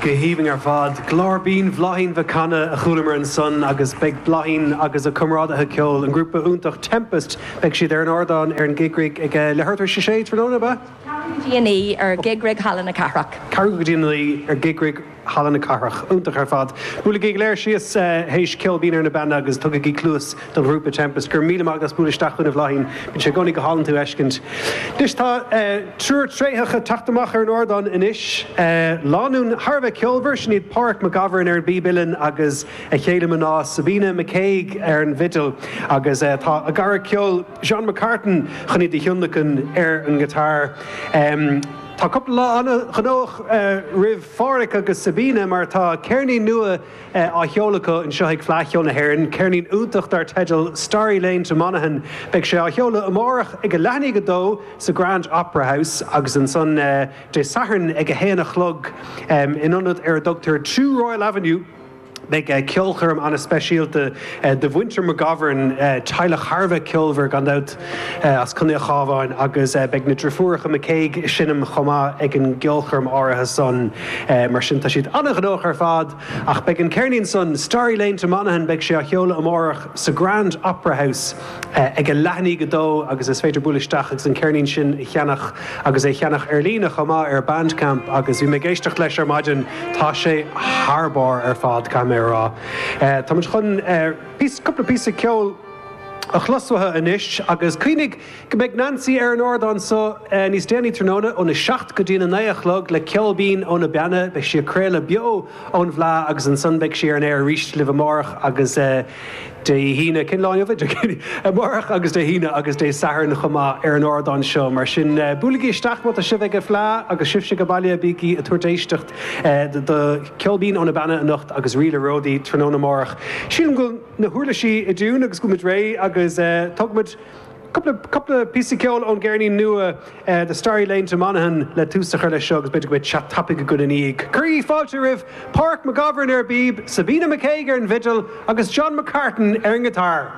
Go haoibhinn ar fad. Glór binn Bhláithín Mhic Cana a chualamar ansan agus beidh Bláithín agus a comrádaithe ceoil, an grúpa iontach Tempest, beidh siad ar an ardán ar an Gig Rig ag leathuair tar éis a 6 tráthnóna, ab ea? Ceathrú go dtí a naoi ar Gig Rig Halla na Cathrach. Ceathrú go dtí a naoi ar Gig Rig. Halla na Cathrach. Iontach ar fad. Buailigí ar fad síos théis Ceol Binn ó na Beanna agus tugaigí cluas don ghrúpa Tempest. Go raibh míle maith agat as bualadh isteach chugainn a Bhláithín. Bíonn sé i gcónaí go hálainn tú a fheiscint. Anois tá triúr tréitheach ag teacht amach ar an ardán anois. Lánúin thar a bheith ceolmhar, sin iad Páraic McGovern ar an bpíb uilleann agus a chéile mná Sabina McCague ar an bhfidil agus tá a gcara ceoil John McCartan chun iad a thionlacan ar an ngiotár. Tá cúpla lá an-ghnóthach roimh Pháraic agus Sabina mar tá ceirnín nua á sheoladh acu anseo ag Fleadh Cheoil na hÉireann, ceirnín iontach dar teideal 'Starry Lane to Monaghan'. Beidh sé á sheoladh amárach ag a leath i ndiaidh a 2 sa Grand Opera House agus ansan Dé Sathairn ag a haon a chlog in ionad ar a dtugtar 2 Royal Avenue, Beidh ceolchoirm ana-speisialta do mhuintir McGovern, teaghlach thar a bheith ceolmhar gan dabht, as Contae an Chábháin agus beidh na driofúracha McCague ag seinm chomh maith ag an gceolchoirm áirithe san. Mar sin tá siad ana-ghnóthach ar fad. Ach beidh an ceirnín san, Starry Lane to Monaghan, beidh sé á sheoladh amárach sa Grand Opera House. ag a leath i ndiaidh a 2 agus is féidir bualadh isteach agus an ceirnín sin a cheannach agus é a cheannach ar líne chomh maith ar Bandcamp agus bhí mé ag éisteacht leis ar maidin tá sé thar barr ar fad caithfidh mé a rá. Táimid chun píosa cúpla píosa ceoil a chlos uathu anois agus cuimhnigh go mbeidh Neansaí ar an ardán so níos déanaí tráthnóna óna 7 go dtína 9 a chlog le Ceol Binn ó na Beanna beidh sí ag craoladh beo ón bhFleá agus ansan beidh sí ar an aer arís libh amárach agus Dé hAoine, cén lá inniu é? Dé Céadaoin, amárach agus Dé hAoine agus Dé Sathairn chomh maith ar an ardán seo. Mar sin, buailigí isteach má tá sibh ag an bhFleá agus sibhse ag baile, bígí ag tabhairt éisteacht do Cheol Binn ó na Beanna anocht agus Ríl an Ródaí tráthnóna amárach. Sílim go bhfuil na huirlisí i dtiúin agus go bhfuil muid réidh agus tógfaimid. Cúpla píosa ceoil ón gceirnín nua The Starry Lane to Monaghan le tús a chur leis seo agus b'fhéidir go mbeidh chat tapaidh againn ina dhiaidh. Cuirigí fáilte roimh Páraic McGovern ar an bpíb, Sabina McCague ar an bhfidil agus John McCartan ar an ngiotár.